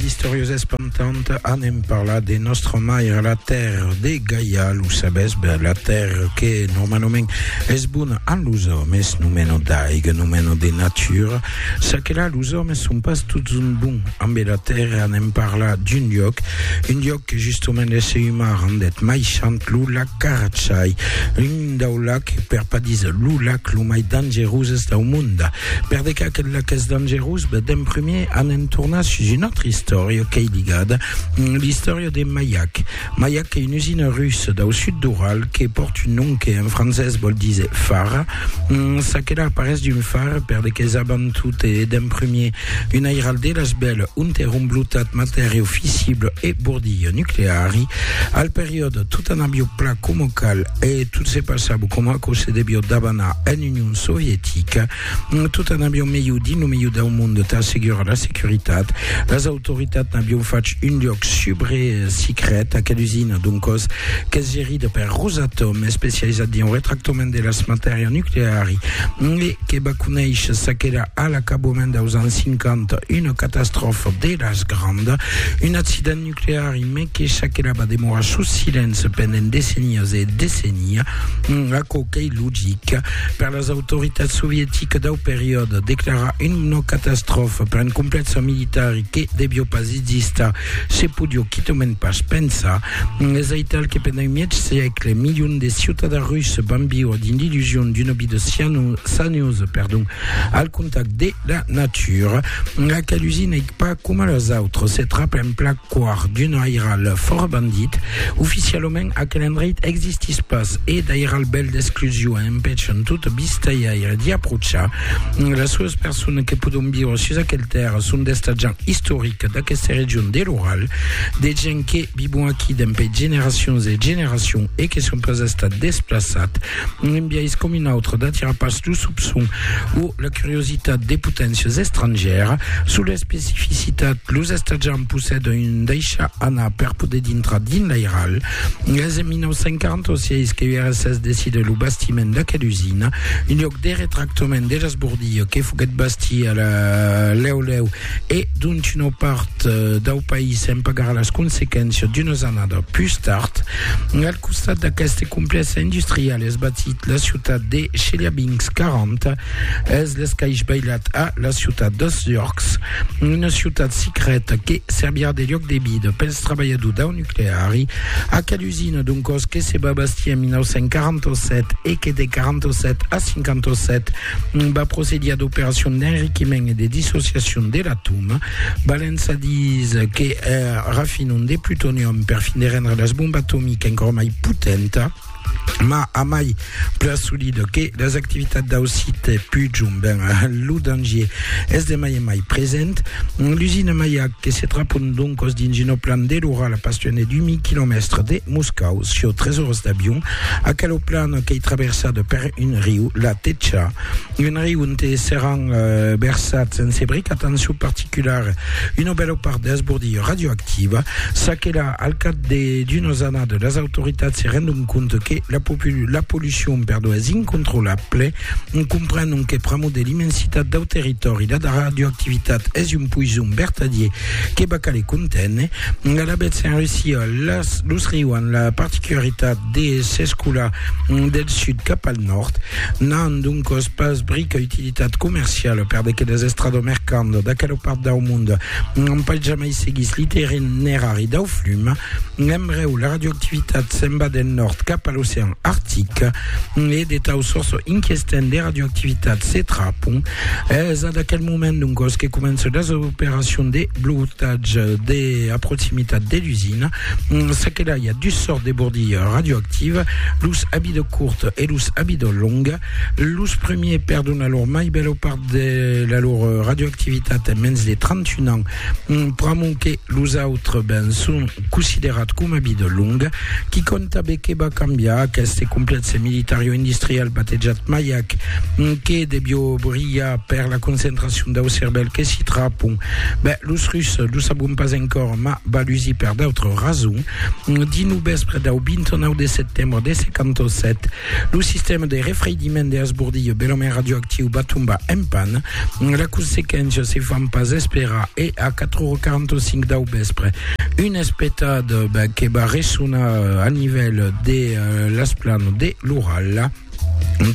Istorios espantant anem parlar de nostra maire la terre de Gaia lo sabes ben la terre que normalement es bona a los hommes no meno d'aiga no meno de natura sa que là los hommes son pas tots un bon amb la terre anem parlar d'un lloc un lloc que justement l'essai humain rendet mai chant lo lac Carachai un dau lac per pas dire lo lac lo mai dangeroses dau monde Per de qu'aquel lac es dangerós, dèm prumèr anem tornar sus una autra istòria qu'ei ligada, l'istòria de Mayak. Mayak qu'ei una usina russa dau sud d'Ural que pòrt un nom que en francés vòl díser fara. Ça que la aparés d'un far per de qu'es abant tot e dèm prumèr un airal de las bèls ont èra un blotat matèria fissible e bordilha nucleari. Al periòde, tot anabio pla coma cal e tot se passava coma aquò se devió dabanar en Union Sovietica, tot an avion melhor dins lo melhor dau monde tà assegurar la securitat. Las autoritats n'avion fach un lloc subre sicret aquela usina, doncòs qu'es gerida per Rosatom, especializat dins lo retractament de las matèrias nucleari, e que va conéisher çaquelà a l'acabament daus ans 50 una catastròfa de las grandas, un accident nucleari. crear un mètge çaquelà va demorar sus silenci pendent decennias e decennia, aquò qu'ei logic. Per las autoritats sovieticas dau periòde, declarar una catastròfa per un complèxe militar que devió pas existar se podió quitament pas pensar. Es aital que pendent un mièg sègle, milions de ciutadans russes van viure dins l'illusion d'una vida saniosa al contacte de la natura. Aquel usin ei Pas coma los autres, se trap en plan quart d'un airal fòra bandit. Oficialament, aquel endreit existís pas e d'airal bèl d'exclusion e empèchan tot vistaiaire d'i aprochar. Las solas personas que pòdon viure sus aquel tèrra son d'estatjants istorics d'aqueste region de l'Oral, de gents que vivon aquí dempè generacions e generacions e que son pas estats desplaçats. un biais com un autre d'atirar pas lo sopçon o la curiositat de poténcias estrangièras sus l'especificitat los estatjants possèdan un daishar anar per poder dintrar dins l'airal es en 1946 que URSS decide lo bastiment d'aquela usina un lhòc de retractament de l'esbordilha que foguèt bastia lèu lèu E donc una part dau país en pagarà las consequéncias d'unas annadas pus tard. Al costat d'aqueste complèxe industrial es batit la ciutat de Cheliabinsk, 40 es l'escaish bailat a la ciutat de Sturks, una ciutat secreta que servirà de lloc de vida pels trabalhadors dau nucleari. Aquela usina d'un còs que se va bastir en 1947 e que de 47 a 57 va procedir ad operacion d'enriquiment e de dissociacion de l'atòm, balent sa dins que er rafinon de plutonium per fin de rendre las bomba atomica encor mai potenta, ma a mai plan solid que las activitats dau site Pujum, ben lo dangier es de mai en mai present. L'usina Mayak que se trapon doncos dins una plan de l'Oral a pas tuan de 2000 quilomèstres de Moscau, sieu 3 oras d'avion, Aquelo plan qu'ei traversat per un riu, la Techa, un riu onte seràn versats en sebric, atencion particulara, una bèla part d'esbordilha radioactiva, ça que la, al cap d'unas annadas, las autoritats se rendon compte que la pollucion, perdon, es incontrolable, En comprenent que pr'amor de l'immensitat dau territòri la radioactivitat es un poison vertadier que va caler conténer, alavetz s'en reussiá los riu an la particularitat de s'escolar del sud cap al nòrd, n'an doncòs pas brica utilitat comerciala per de quedas estrada mercanda d'aquela part dau monde n'an pas jamai seguís l'itinerari dau flum. L'embreu, la radioactivitat s'en va del nòrd cap a l'ocean artic. e de tau sòrç inquestent de radioactivitat se trapon, es ad aquel moment doncòs que començan las operacions de blotatge de a proximitat de l'usina. Ça que l'ai a dus sòrts de bordilha radioactiva, los abido curt e los abido long. Los premiers perdon la lor mai bèla part de la lor radioactivitat en mens de 31 ans, pr'amont que los autres ben son considerat coma vida longa, qui conta be que va cambiar aqueste complèxe militario-industrial batejat Mayak, que devió brilhar per la concentracion dau cervèl que s'i trapon. Ben, los Russes, lo sabon pas encòra, mas va lusir per d'autres rasons. Dins lo vèspre dau 29 de setembre de 57, Lo sistèma de refreidiment de Asbordillo, belament radioactiu, va tombar en pan. La consequéncia se fan pas esperar e a 4h45 dau vèspre, un espetat que va ressonar a nivèl de l'esplanada de l'Ural,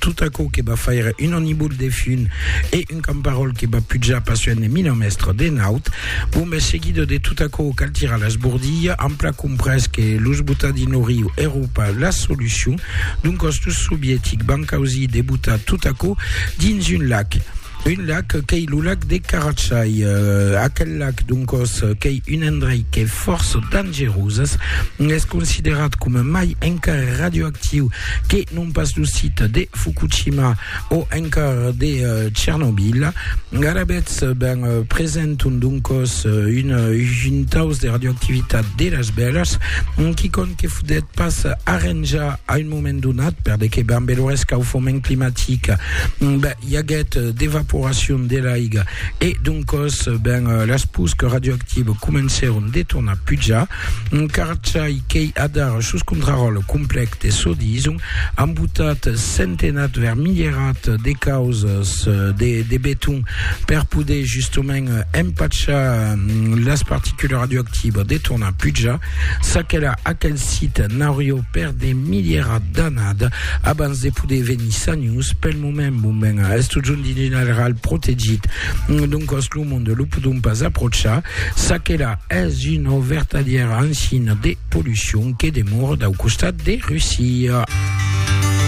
tot aquò que va faire un anibul de fum e Un camparòl que va pujar passuènt de mina mèstra de naut, bon mes seguido de tot aquò cal tirar las bordilha, ampla comprés que los botar dins lo riu èro pas la solucion, doncas los sovietics van causir de botar tot aquò dins un lac, un lac qu'ei lo lac de Karachay, aquel lac doncas qu'ei un endrei qu'ei fòrça dangerosas, es considerat coma mai encara radioactiu que non pas lo site de Fukushima, o encara de Tchernobyl. Garabets ben presenton doncos un juntaus de radioactivitat de las bèlas, quicòm que fodet pas arranjar a un moment donat, per de que ben lo rescaufoment climatic ben, i aguèt d'evaporacion de l'aiga e doncos ben las pusques radioactives comencèron de tornar pujar. Un carchai qu'ei adar sus contraròtle complèc de çò dison, ambotat, centenat, vermilherat de causas de, de beton per poder justament empachar las particules radioactivas de tornar pujar. S'aquela aquel sit n'aurió per de milierat d'anada abans de poder venir sanius. Pel moment, bon ben, es totjorn dins un areal protegit, doncòs lo monde lo podon pas aprochar. S'aquela es una vertadièra ancina de polucion que demora dau costat de Russia.